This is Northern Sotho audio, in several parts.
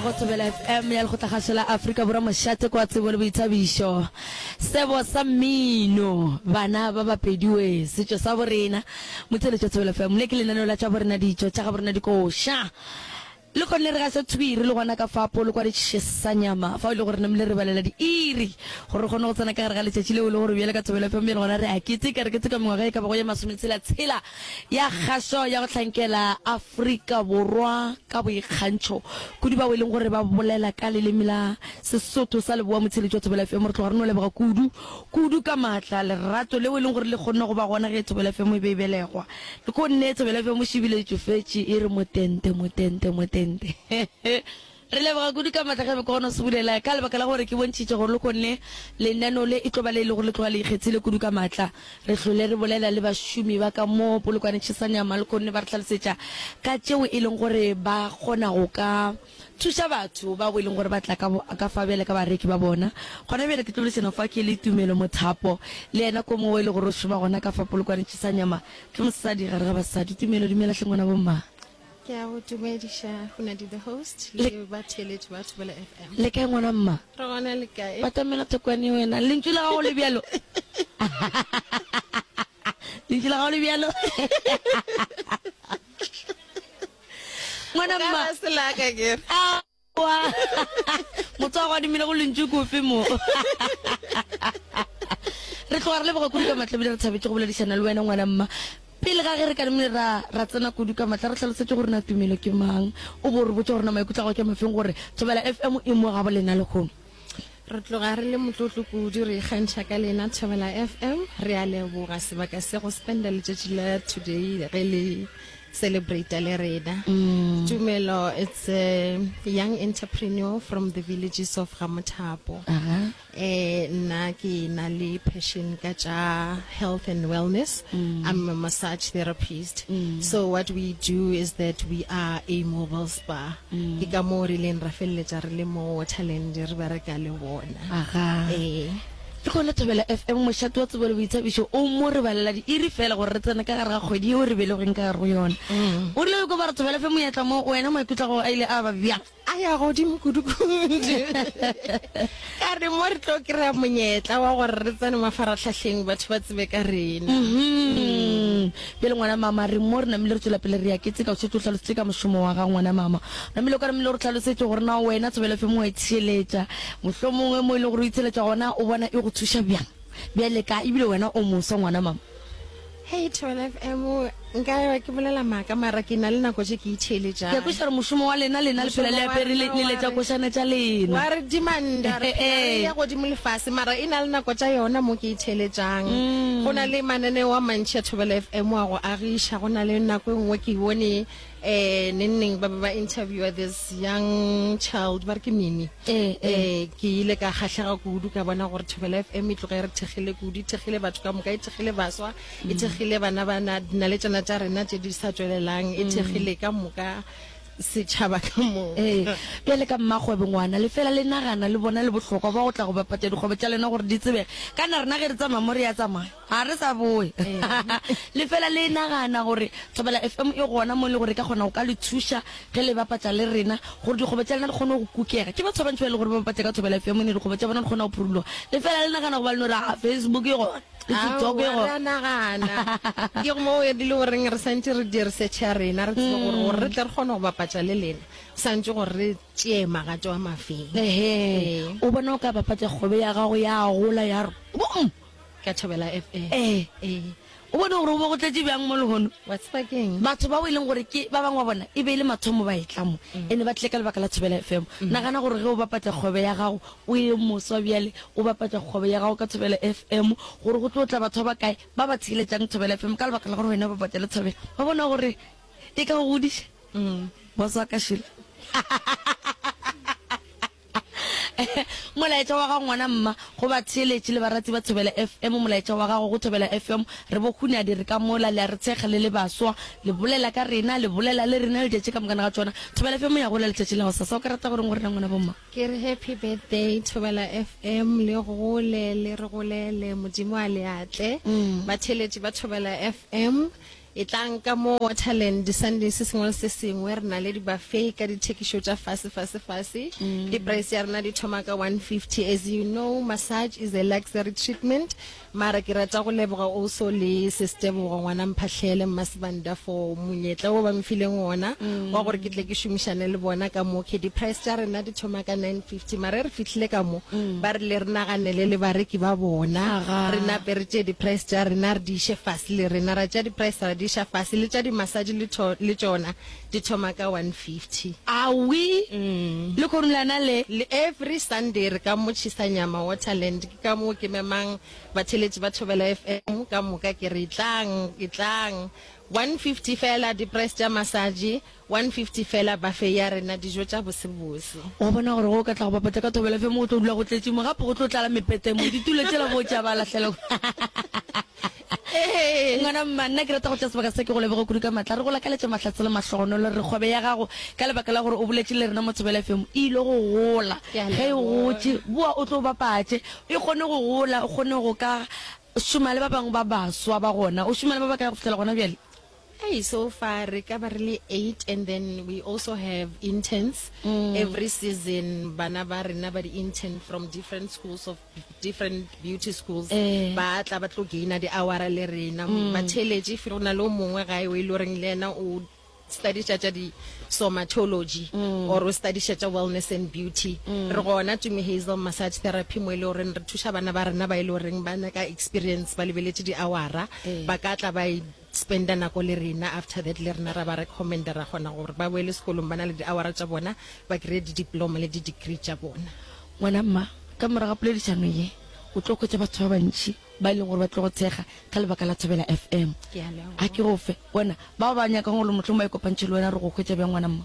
Go Thobela FM ya Lekgotlakgašo la Afrika Borwa Mošate kwa Tsebo le Boithabišo Sebo sa Mmino Bana ba Bapedi we Setšo sa Borena Motheletšo Thobela FM Le ke lenaneo la tša borena ditšo tša ga borena dikoša Le kgonne re gase thwi re le gona ka fapo le kwa re tšhesa nyama fao e le gore ne mle re balela di iri gore re kgone go tsena ka gare ga letšatši leo le gore bjale ka Thobela FM ya le gona re a keteka re keteka mengwaga e ka bago ye masometshela tshela ya kgaso ya go hlankela Afrika Borwa ka boikgantšho kudu bao e leng gore ba bolela ka leleme la Sesotho sa Leboa Motsheletši wa Thobela FM. Re tloga re no leboga kudu kudu ka maatla lerato leo e leng gore le kgonne go ba gona ge Thobela FM e be e belegwa. Le ko nne Thobela FM o šibile e tšofetše e re motente motente motente. Re leboga kudu ka matla ge be ke kgona go se bulela ka lebaka la gore ke bontšhitše gore lekhonne lenaneo le e tlo ba le e lego le tloga le ikgethile kudu ka matla. Re hlole re bolela le bašomi ba ka mo Polokwane Chesane ya Malkhonne ba re hlalosetša ka tšeo e leng gore ba kgona go ka thuša batho bao e leng gore ba tla ka bo ka fa bjale ka bareki ba bona. Gona bjale ke tlo boledišana fa ke le Tumelo Mothapo le yena ko mongwe o e le gore o šoma gona ka fa Polokwane Chesane ya ma ke mosadi gare ga basadi. Tumelo dumela hle ngwana bo mma. ke a go dumediša go na di the host le ba theletše ba thobela fm le kae ngwana mma re gona le kae batamela thokwane wena lentšu la gago le bjalo lentšu la gago le bjalo ngwana mma selaka kere Wa motsa go adimile go lentšu kofe mo. Re tloga re leboga kudu ka matla bile re thabetše go boledišana le wena ngwana mma. Pele ga ge re ka le ra ra tsena kudu ka matla re hlalosetše gore na tumelo ke mang. O bo re botša gore na maikutlo a gago ke a mafeng gore Thobela FM e mo ga bo lena lehono. re tloga re le motlotlo kudu re ikgantšha ka lena thobela fm re a leboga sebaka se go spenda letšatši la today ge le celebrate le rena mm. tumelo it's a young entrepreneur from the villages of gamothapo uh -huh. eh nna ke na le passion ka tša health and wellness mm. i'm a massage therapist mm. so what we do is that we are a mobile spa Ke ka moo re ileng ra feleletša re le mo Waterland re bereka le bona. Aga. Ee. Ke gona Thobela FM, mošate wa tsebo le boithabišo, o mo re balela diiri fela gore re tsene ka gare ga kgwedi yeo re belegweng ka gare go yona. O rile o ikwa ba re Thobela FM monyetla mo go wena, maikutlo a gago a ile a ba bjang? A ya godimo kudu kudu. Ka re mo re tlo kry-a monyetla wa gore re tsene mafarahlahleng batho ba tsebe ka rena. Bjale, ngwana mama, re mo re namile re tšwela pele re ya, ke tseka o šetše o hlalositše ka mošomo wa gago, ngwana mama. O namile o ka namile o re hlalosetše gore na wena Tsebelofemo wa itsheletša. Mohlomongwe mo e lego gore o itsheletša gona o bona e go thuša bjang bjale ka, ebile wena o moswa, ngwana mama. Hei, Tsebelofemo, nka ewa ke bolela maaka, mara ke na le nako tše ke itheeletšang. Ke a kwešiša gore mošomo wa lena, lena le phela le apere, le, le letša košana tša lena. Wa re dimanda, re phela re eya godimo le fase, mara e na le nako tša yona mo ke. theeletšang mm. go na le mananeo a mantšhi a thobela f m wa go agiša go na le nako e nngwe ke bone um eh, nengneng ba be ba interviewer this young child ba re ke mimi um eh, eh. ke ile ka kgatlhega kudu ka bona gore thobela f m e tloga e re thekgile kudu e thekgile batho ka moka e thekgile baswa e mm. thekgile bana ba na le tsona tša rena tse di sa tswelelang e mm. thekgile ka moka setšhaba ka moka. Ee, bjale ka mmakgwebo ngwana, le fela le nagana le bona le bohlokwa bwa go tla go bapatša dikgwebo tša lena gore di tsebege. Kana rena ge re tsamaya mo re ya tsamaya, ga re sa boya. Le fela le nagana gore Thobela FM e gona mo e le gore e ka kgona go ka le thuša ge le bapatša le rena gore dikgwebo tša lena di kgone go kukega. Ke batho ba bantši ba e le gore ba bapatša ka Thobela FM ne dikgwebo tša bona di kgona go phuruloga. Le fela le nagana goba le no re, Aa, Facebook e gona. Ke tsoke go- Aowa, ra nagana ke go mo e dile goreng re santse re dire search ya rena re tsebe gore gore re tle re kgone go bapatša le lena santse gore re tšee magato wa mafeng ehe o bona o ka bapatsa kgobe ya gago ya gola ya re bom ka thobela f a ee ee o bone gore o bo go tletše bjang mo lehono wa tseba keng batho bao e leng gore ke ba bangwe wa bona e be e le mathomo ba e tlamo ene ba tlile ka lebaka la thobela fm nagana gore ge o bapatsa kgobe ya gago O ye moswa bjale, o bapatša kgwebo ya gago ka Thobela FM. Gore go tlo tla batho ba ba kae ba ba theeletšang Thobela FM ka lebaka la gore wena o bapatša le Thobela? Ba bona gore e ka go godiša? Boss wa ka Sheila. Molaetša wa gago ngwana mma go batheeletši le barati ba Thobela FM, molaetša wa gago go Thobela FM, re bo Hunyadi re ka mola, le a re thekga le le baswa, le bolela ka rena, le bolela le rena letšatši ka moka na ga tšona. Thobela FM ya gola letšatši la gosasa. O ka rata go reng go rena ngwana bo mma? Ke re happy birthday Thobela FM le gole le re golele Modimo a le atle. Batheeletši ba Thobela FM e tlang ka mo Waterland di Sunday se sengwe le se sengwe re na le dibafei ka dithekišo tša fase fase fase. Di price ya rena di thoma ka 150 as you know massage is a luxury treatment Mara ke rata go leboga Ouso le Sis Tebogo ngwana Mphahle le Mma Sibanda for monyetla o ba mfileng wona wa gore ke tle ke šomišane le bona ka mo ke di price tša rena di thoma ka 950 mara e re fihlile ka mo ba re le re naganele le bareki ba bona Aga. re nape re tše di price tša rena re di iše fase le rena ra tša di price ra di iša fase le tša di massage le tho- le tšona di thoma ka 1:50. Awi, le korulana le. Le every Sunday re ka motšhisa nyama Waterland. Ke ka moo ke memang batheletši ba Thobela FM ka moka ke re, Tlang, etlang. 1:50 feela, di price tša massage, 1:50 feela buffet ya rena, dijo tša bosebose. Wa bona gore ge o ka tla go bapatša ka Thobela FM go tlo dula go tletše mo, gape go tlo tlala mepete mo, ditulo tšela bo tša ba lahlela. Ee, ngwana mma, nna ke rata go tšea sebaka se ke go leboge kudu ka matla. Re go lakaletša mahlatse le mahlogonolo. Re re kgwebe ya gago, ka lebaka la gore o boletše le rena mo Thobela FM, e ile go gola. Ke a Ge e leboga. gotše, boa o tlo o bapatše. E kgone go gola, o kgone go ka šoma le ba bangwe ba baswa ba gona. O šoma le ba bakae go fihlela gona bjale? Hey, so far re ka ba re le eight and then we also have interns mm. every season bana ba rena ba di-intern from different schools of different beauty schools eh. ba tla ba tlo gaina di-awara le rena mm. ba theletše fe go na le o mongwe gae o e le goreng le ena o studiša tša di-somatology mm. or o studiša tša wellness and beauty mm. re gona tumi hazel massage therapy mo e le goreng re thuša bana ba rena ba e le goreng ba nyaka experience ba lebeletše di-awara eh. ba ka tla ba e spender nako le rena after that le rena ra ba recommender ra kgona gore ba boele sekolong ba na le di-hour-a tša bona ba kry-e di-diploma le di-degree tša bona. Ngwana mma, ka morago ga poledišano ye o tlo hwetša batho ba bantši ba e leng gore ba tlo go tshega ka lebaka la Thobela FM. Ke a leboga. A ke go fe bona bao ba nyakang gore mohlomongwe ba ikopantšhe le wena re go hwetša bjang ngwana mma?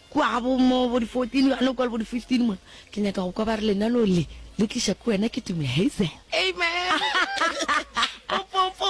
Kua bo mo bo di 14 bjalo le kua le bo di 15 mo. Ke nyaka go kwa ba re lenaneo le le tliša ke wena ke Tumi Hazel. Amen. Popopo.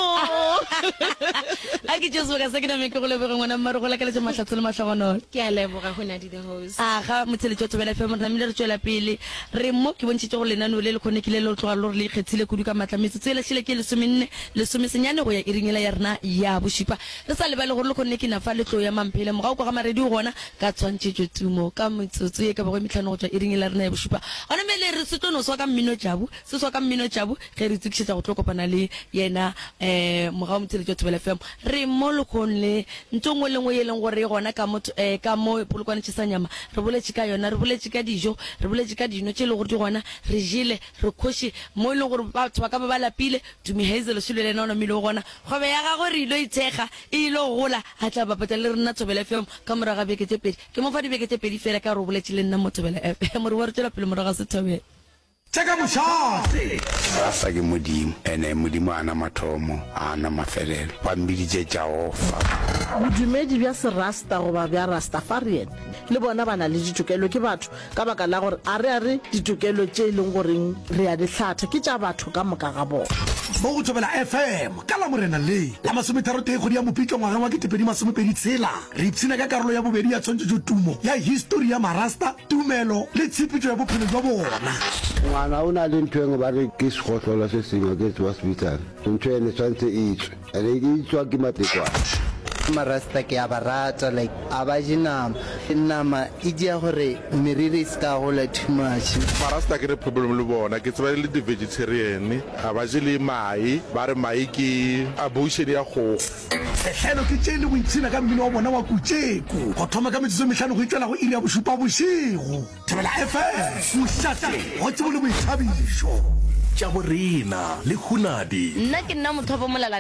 A ke tšeo sebaka se ke name ke go leboge ngwana mmaru go lakaletša mahlatso le mahlogonolo. Ke a leboga go Nadi the host. A ga motheletši wa Thobela FM re namile re tšwela pele re mo ke bontšhitše gore lenaneo le le kgone ke le le tloga lo re le ikgethile kudu ka maatla metsotso e lahlile ke lesomenne lesome senyane go ya iring yela ya rena ya bošupa Le sa lebale gore lekgonne ke na fa le tlo ya Mamphele morago kwa ga Marediu gona ka tshwantšhetšo tumo ka metsotso ye ka bago e metlhano go tšwa iring e la rena ya bošupa. Gona me le re se tlo no swa ka Mmino Jabu, se swa ka Mmino Jabu ge re itokišetša go tlo kopana le yena eh morago motheletši wa Thobela FM. Re mo lekgonne ntho nngwe le nngwe ye leng gore e gona ka mo eh ka mo polokwane tšhesa nyama re boletše ka yona, re boletše ka dijo, re boletše ka dino tše le gore di gona, re jele, re kgoše mo e leng gore batho ba ka ba ba lapile. Tumi Hazel Shulelena o lomile o gona. Kgwebo ya gagwe re ilo ithekga e ilo gola. A tla bapetsa le rena Thobela FM ka morago ga beke tše pedi. Ke mo fa dibeke tše pedi feela ka gore o boletše le nna mo Thobela FM. More wa re tšwela pele morago ga Sethobela. Tša ka mošate. Rasa ke Modimo, ene Modimo a na mathomo, a na mafelelo. Ba mmiditše Jaofa. Bodumedi bja Serasta goba bja Rastafarian le bona ba na le ditokelo, ke batho Ka baka la gore a re a re ditokelo tše e leng goreng re a di hlatha ke tša batho ka moka ga bona. Mo go Thobela FM ka Lamorena le la masometharotee kgwedi ya Mopitlo ngwageng wa ketepedi masomepedi tshela, re ipshina ka karolo ya bobedi ya tshwantšhetšo tumo ya histori ya Marasta, tumelo le tshepetšo ya bophelo bja bona. Ngwana o na le ntho engwe ba re ke segohlolo se sengwe ke se ba se bitsang, ntho ene tshwantse e tswe. Re ke tswa ke matekwane. Marasta ke a ba rata like a ba je nama nama e dia gore meriri e se ka gola too much. Marasta ke re problem le bona ke tseba e le di vegetarian a ba je le mae ba re mae ke abortion ya kgogo. Sehlelo ke tše le go ipshina ka mmino wa bona wa Kutšeko go thoma ka metsotso e mehlano go itšwela go iri ya bošupa bošego. Thobela FM, Kušate, Gotsebo le Boithabišo. Tša bo rena le Hunadi. Nna ke nna mothopo molala.